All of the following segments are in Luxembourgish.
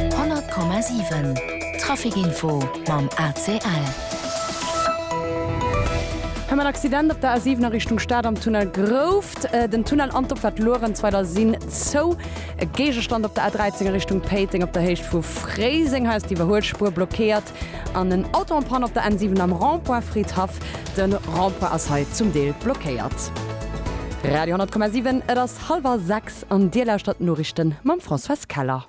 100,7 Trafic Info mam ACL. Hei mat Accident op der A7 a Richtung Stad am Tunnel Grouft. Den Tunnel an d'Opfahrt Luerenzweiler sinn zou. E Géigestand op der A13 a Richtung Péiteng op der Héicht vu Fréiseng. Hei ass d'Iwwerhuelspuer blockéiert. An en Auto en panne op der N7 am Rond-point Fridhaff. Den Rond-point ass hei zum Deel blockéiert. Radio 10,7 Et ass hallwer 6 an Dir lauschtert d'Noriichten mam Françoise Keller.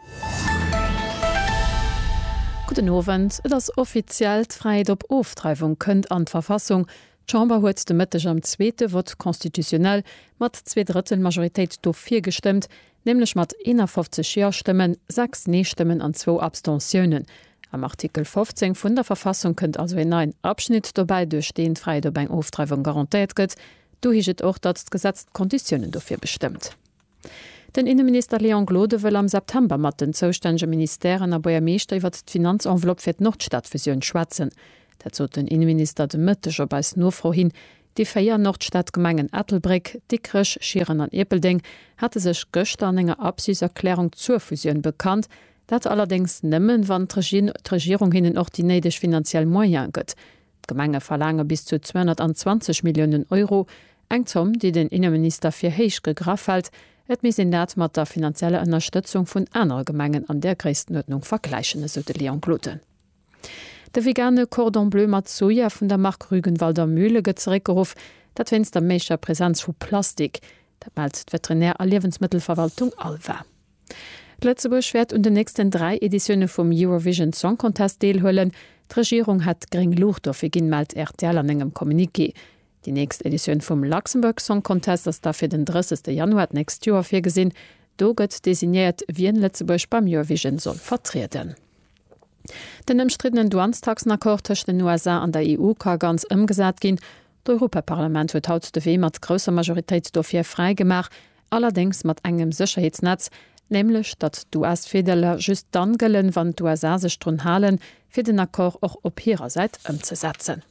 Gudden Owend. Et ass offiziell, D'Fräiheet op Ofdreiwung kënnt an d'Verfassung. D'Chamber huet de Mëtteg am zweete Vote constitutionnel mat zwee Drëttel Majoritéit do virgestëmmt, nämlech mat 51 Ja-Stëmmen, 6 Nee-Stëmmen an zwou Abstentiounen. Am Artikel 15 vun der Verfassung kënnt also een neien Abschnitt dobäi, duerch deen d'Fräiheet op eng Ofdreiwung garantéiert gëtt. Do heescht et och, datt d'Gesetz d'Konditiounen dofir bestëmmt. Den Inneminister Léon Gloden wëll am September mat den zoustännege Ministèren a Buergermeeschter iwwert d'Finanzenveloppe fir d'Nordstadfusioun schwätzen. Dat sot den Inneminister de Mëtteg op eis Nofro hin. Déi véier Nordstadgemengen Ettelbréck, Dikrech, Schieren an Ierpeldeng hate sech gëschter an enger Absichtserklärung zur Fusioun bekannt, dat allerdéngs nëmmen, wann d'Regierung hinnen och déi néideg finanziell Moyene gëtt. D'Gemenge verlaange bis zu 220 Milliounen Euro, eng Zomm, déi den Inneminister fir héich gegraff hält, et misst een dat mat der finanzieller Ënnerstëtzung vun anere Gemengen an där Gréisstenuerdnung vergläichen, esou de Léon Gloden. De vegane Cordon Bleu mat Soja vun der Mark Rügenwalder Mühle gëtt zeréckgeruff, dat wéinst der méigster Presenz vu Plastik. Dat mellt d'Veterinär a Liewensmëttelverwaltung Alva. Lëtzebuerg wäert un den nächsten dräi Editioune vum Eurovision Song Contest deelhuelen. D'Regierung hätt gréng Luucht dofir ginn, mellt rtl an engem Communiqué. Déi nächst Editioun vum Luxembourg Song Contest ass da fir den 30 Januar d'nächst Joer virgesinn. Do gëtt designéiert, wien Lëtzebuerg beim Eurovision soll vertrieden. Den ëmstriddenen Douanestaxenaccord tëscht den USA an der EU ka ganz ëmgesat ginn. D'Europaparlament huet haut de Wee mat grousser Majoritéit dofir fräi gemaach, allerdéngs mat engem Sécherheetsnetz, nämlech datt d'US-Virdeeler just dann gëllen, wann d'USA sech drun halen, fir den Accord och op hirer Säit ëmzesetzen.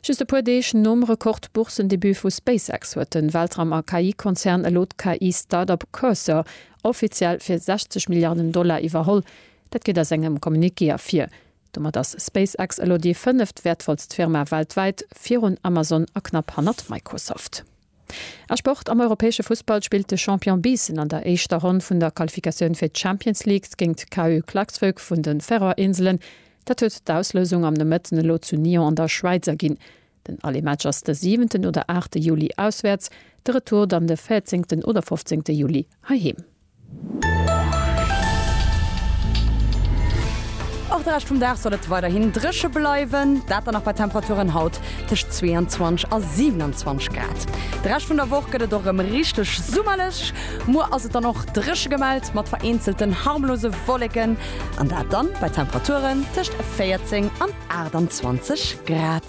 Just e puer Deeg nom Rekord-Boursendebut vu SpaceX huet de Weltraum a KI-Konzern elo d'KI-Startup Cursor offiziell fir 60 Milliarden Dollar iwwerholl. Dat geet aus engem Communiqué ervir. Domat ass SpaceX elo déi fënneft wäertvollst Firma weltwäit, virun Amazon a knapp hannert Microsoft. A Sport, Am europäesche Fussball spillt de Champion Biissen an der éischter Ronn vun der Qualifikatioun fir d'Champions League géint d'KU Klaksvik vun de Färöer Inselen. Dat huet d'Auslousung am Nomëtten elo zu Nyon an der Schwäiz erginn. Den Aller Match ass de siwenten oder aachte Juli auswäerts, de Retour dann de véierzéngten oder fofzéngte Juli heiheem. Och de Rescht vum Dag soll et weiderhin dréche bleiwen, dat dann nach bei Temperaturen haut tëscht 22 a 27 Grad. De Rescht vun der Woch gëtt et och rëm richteg summerlech. Muer ass et dann och dréche gemellt, mat vereenzelten harmlose Wolleken, an dat dann bei Temperaturen tëscht 14 an 28 Grad.